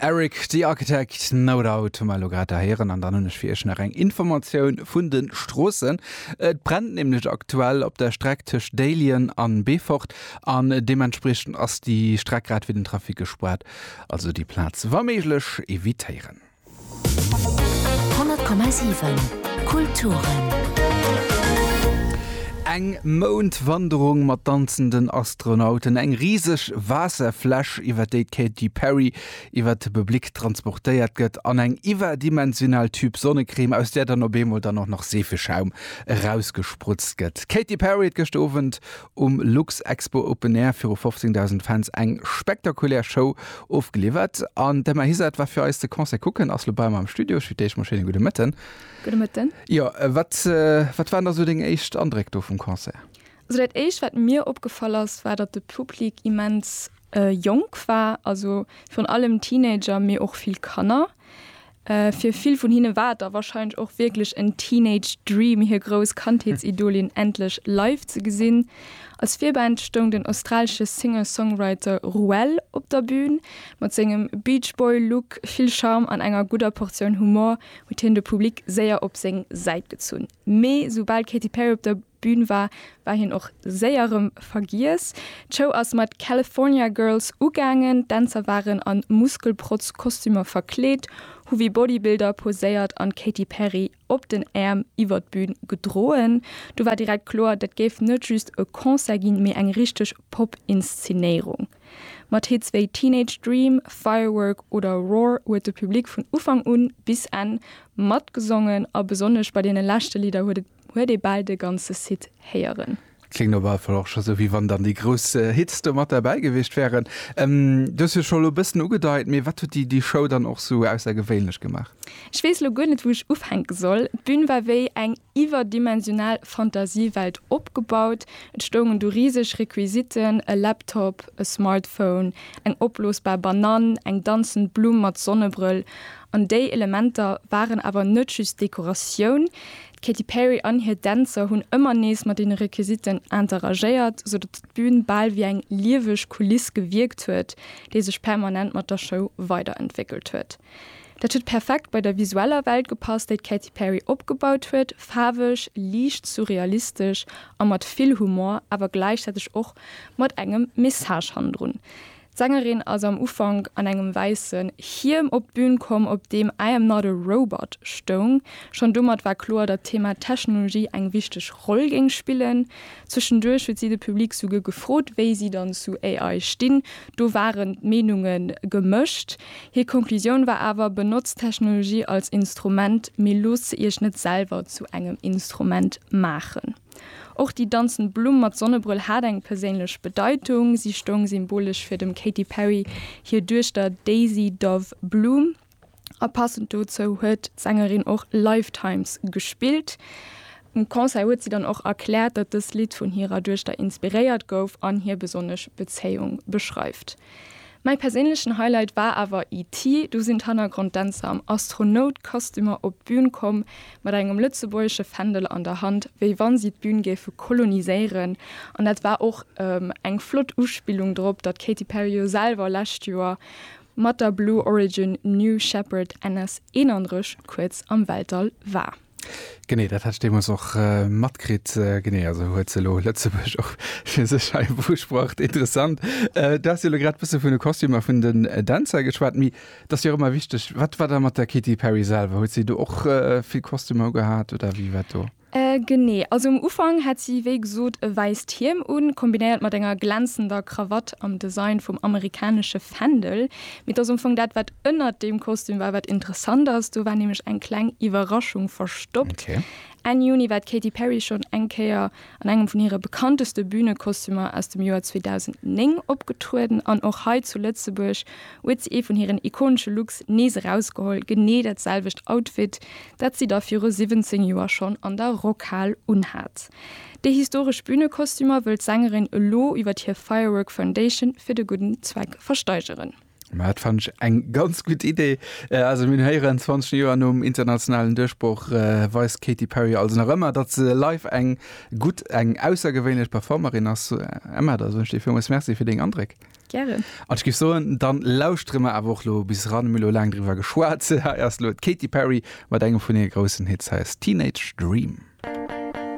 Eric the Architect, No Doubt hu mer elo grad erhéieren an dann hunn ech fir Iech nach eng Informatioun vun de Stroossen. Et brennt nämlech aktuell op der Streck tëscht Déiljen an Beefort an deementspriechend ass déi Streck grad fir den Trafic gespaart, also déi Plaz wa méiglech evitéieren. 100,7 Kulturen. Eng Moundwanderung mat danzenden Astronauten, eng riseg Waasserfläsch, iwwer déi d'Katy Perry iwwer de Public transportéiert gëtt, an eng iwwerdimensional Tüb Sonnecrème, aus där dann op eemol dann och nach Seefeschaum erausgesprutzt gëtt. D'Katy Perry huet gëschter Owend um Luxexpo Open Air viru 15.000 Fans eng spektakulär Show ofgeliwwert. An d'Emma Hisard war fir eis de Concert kucken, ass lo bei mer am Studio. Schütt dir iech mol schéin e gudde Mëtten. Gudde Mëtten. Jo, wat, wat waren da sou deng éischt Andréck do vum Concert? Also dat éischt, wat mir opgefall ass, war, datt de Public immens jonk war, also virun allem Teenager, mee och vill Kanner. Fir vill vun hinne war et da warscheinlech och wierklech en Teenage Dream, hir grouss Kandheetsidolin endlech live ze gesinn. Als Virband stoung den australesche Singer-Songwriter Ruel op der Bün. Mat sengem Beach Boy Look, vill Charme an enger gudder Portioun Humor huet hien de Public séier op seng Säit gezunn. Mee soubal d'Katy Perry op der Bühn war, war hien och séier erëm vergiess. D'Show ass mat California Girls ugaangen. D'Dänzer waren a Muskelprotz-Kostümer verkleet, hu wéi Bodybuilder poséiert an d'Katy Perry op den Äerm iwwert d'Bühn gedroen. Do war direkt kloer, dat géif net just e Concert ginn, mee eng richteg Pop-Inszenéierung. Mat Hits wéi Teenage Dream, Firework oder Roar huet de Public vun Ufank un bis Enn matgesongen a besonnesch bei deene leschte Lidder huet et Huet ee bal de ganze Site héieren. Kléngt op alle Fall och scho sou wéi wann dann déi grouss Hits do mat derbäi gewiescht wären. Du hues jo scho elo e bëssen ugedeit, mee wat huet déi Show dann och sou aussergewéinlech gemaach? Ech weess elo guer net wou ech ufänke soll. D'Bün war wéi eng iwwerdimensional Fantasiewelt opgebaut. Et stoungen do riseg Requisiten, e Laptop, e Smartphone, eng opblosbar Banann, eng danzend Blumm mat Sonnebrëll. An déi Elementer waren awer net just Dekoratioun. D'Katy Perry an hir Dänzer hunn ëmmer nees mat deene Requisiten interagéiert, sou datt d'Bün bal wéi eng lieweg Kuliss gewierkt huet, déi sech permanent mat der Show weiderentwéckelt huet. Dat huet perfekt bei der visueller Welt gepasst, déi d'Katy Perry opgebaut huet, faarweg, liicht surrealistesch a mat vill Humor, awer gläichzäiteg och mat engem Message hannendrun. D'Sängerin ass am Ufank an engem wäissen Hiem op d'Bün komm, op deem I am not a robot stoung. Schonn domat war kloer, datt d'Thema Technologie eng wichteg Roll géing spillen. Zwëschenduerch huet si de Public souguer gefrot, wéi si dann zu AI stinn. Do waren d'Meenunge gemëscht. Hir Conclusioun war awer, Benotzt d'Technologie als Instrument, mee loosst se Iech net selwer zu engem Instrument maachen. Och déi danzend Blumm mat Sonnebrëll hat eng perséinlech Bedeitung, si stoung symbolesch fir dem Katy Perry hir Duechter Daisy Dove Bloom a passend dozou huet d'Sängerin och Lifetimes gespillt. Um Concert huet si dann och erkläert, datt dëst Lidd vun hirer Duechter inspiréiert gouf an hir besonnesch Bezéiung beschreift. Mäi perséinlechen Highlight war awer ET, do sinn d'Hannergronddänzer am Astronoutkostümer op d'Bühn komm, mat engem lëtzebuergesche Fändel an der Hand, wéi wann si d'Bühn géife koloniséieren. An dat war och eng flott Uspillung drop, datt d'Katy Perry jo selwer lescht Joer mat der Blue Origin New Shepard NS 31 kuerz am Weltall war. Genee, dat hat ech deemools och matkritt. Genee, also huet se elo Lëtzebuerg och fir sech hei beusprocht. Interessant. Du has jo elo grad e bësse vun de Kostümer a vun den Dänzer geschwat, mee et ass jo och ëmmer wichteg, wat war da mat der Katy Perry selwer? Huet si do och vill Kostümer ugehat oder wéi war dat do? Genee, also um Ufank hat si wéi gesot e wäisst Hiem un, kombinéiert mat enger glänzender Krawatt am Design vum amerikanesche Fändel. Mee et ass am Fong dat, wat ënnert deem Kostüm war, wat interessant ass. Do war nämlech eng kleng Iwwerraschung verstoppt. Enn Juni war d'Katy Perry schonn eng Kéier an engem vun hire bekannteste Bünekostümer aus dem Joer 2009 opgetrueden. An och hei zu Lëtzebuerg huet si ee vun hiren ikonesche Looks nees erausgeholl, genee dat selwecht Outfit, dat si da viru 17 Joer schonn an der Rockhal unhat. Déi historesch Bünekostümer wëll d'Sängerin elo iwwert hir Firework Foundation fir de gudden Zweck versteigeren. Ma dat fannen ech eng ganz gutt Idee. Also mir héieren, 20 Joer nom internationalen Duerchbroch weist d'Katy Perry also nach ëmmer, datt se live eng gutt, eng aussergewéinlech Performerin ass. Emma, da soen ech dir villmools Merci fir deng Andréck. Gären. An ech géif soen, dann lauschtere mer awer och lo bis ran, hu mir elo laang driwwer geschwat. Hei ass elo d'Katy Perry mat engem vun hire groussen Hits, hei ass Teenage Dream.